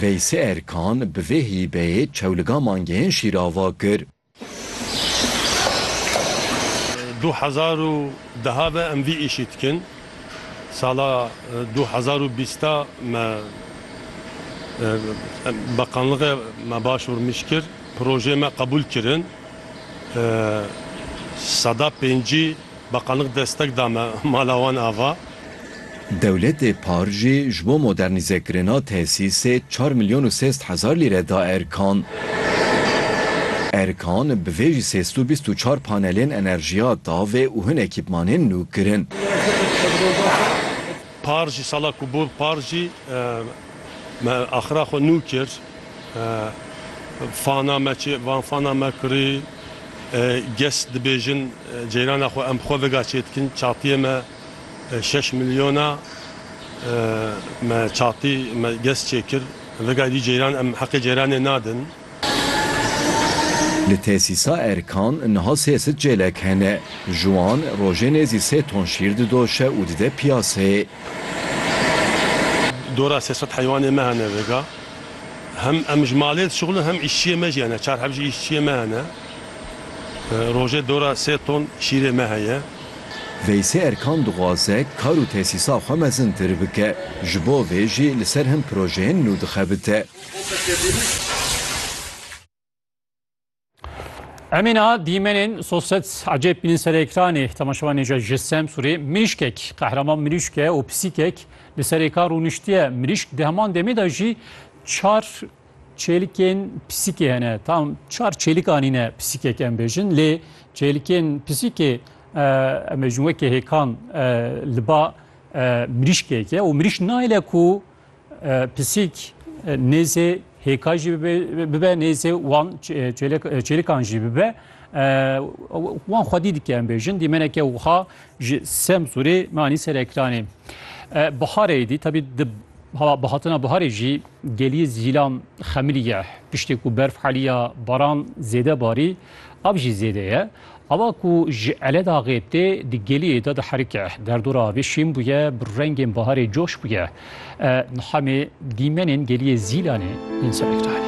Veysê Erkan bi vê hîbeyê çewliga mangehên Şîrava kir. Du hezar û deha ve em vî îşî dikin. Sala du hezar û bîst de me Beqanlığê me Başûr mij kir. Projeyê me qebûl kirin. Seda pêncî. Bakanlik destek da me mala wan ava. Dewletê par jî ji bo modernîzekirina tesîsê çar milyon û sêst hezar lîre da Erkan. Erkan bi vê jî sêst û bîst û çar panelên enerjiya davê û hin ekîpmanên nû kirin. Par jî sala ku bû par jî me axira xwe nû kir. Fana me çê van fana me kirî. Gest dibêjin ceyrana xwe em xwe vega çê dikin. Çatiyê me şeş milyon a. Me çatî me gest çê kir. Vegayî dî ceyran em heqê ceyranê nadin. Li tesîsa Erkan niha sê sid çêlek hene. Ji wan rojê nêzî sê ton şîr didoşe û dide piyaseyê. Dora sê sed heywanê me hene vêga. Hem em ji malê dişuxulin hem îşçiyê me jî hene. Çar heb jî îşçiyê me hene. Rojê dora sê ton şîrê me heye. Veysê Erkan dixwaze kar û tesîsa xwe mezintir bike. Ji bo vê jî li ser hin projeyên nû dixebite. Em ê niha dîmenên sosyet ecêb bînin ser ekranê temaşevanê je ji Semsûrê mirîşkek qehreman mirîşk e û pisîkek li ser êkan rûniştiye mirîşk di heman demê de jî çar çêlikên pisîkê hene tam çar çêlik anîne pisîkek em bêjin lê çêlikên pisîkê em bêjin wekê hêkan li ba mirîşkek e û mirîş nayile ku Pisîk nêzê hêka jî bibe nêzê wan çêlikan jî bibe wan xwedî dike em bêjin dîmeneke wiha ji sem sûrê me anî ser ekranê. Biharê dî tabî bihatina biharê jî geliyê zîlan xemilî ye piştê ku berf haliya baran zêde barî av jî zêde ye. Ava ku ji Eledaxê tê di geliyê de diherike. Derdora avê şîn bûye, bi rengên baharê coş bûye. Niha me dîmenên geliyê Zîlanê yên serê kirayê.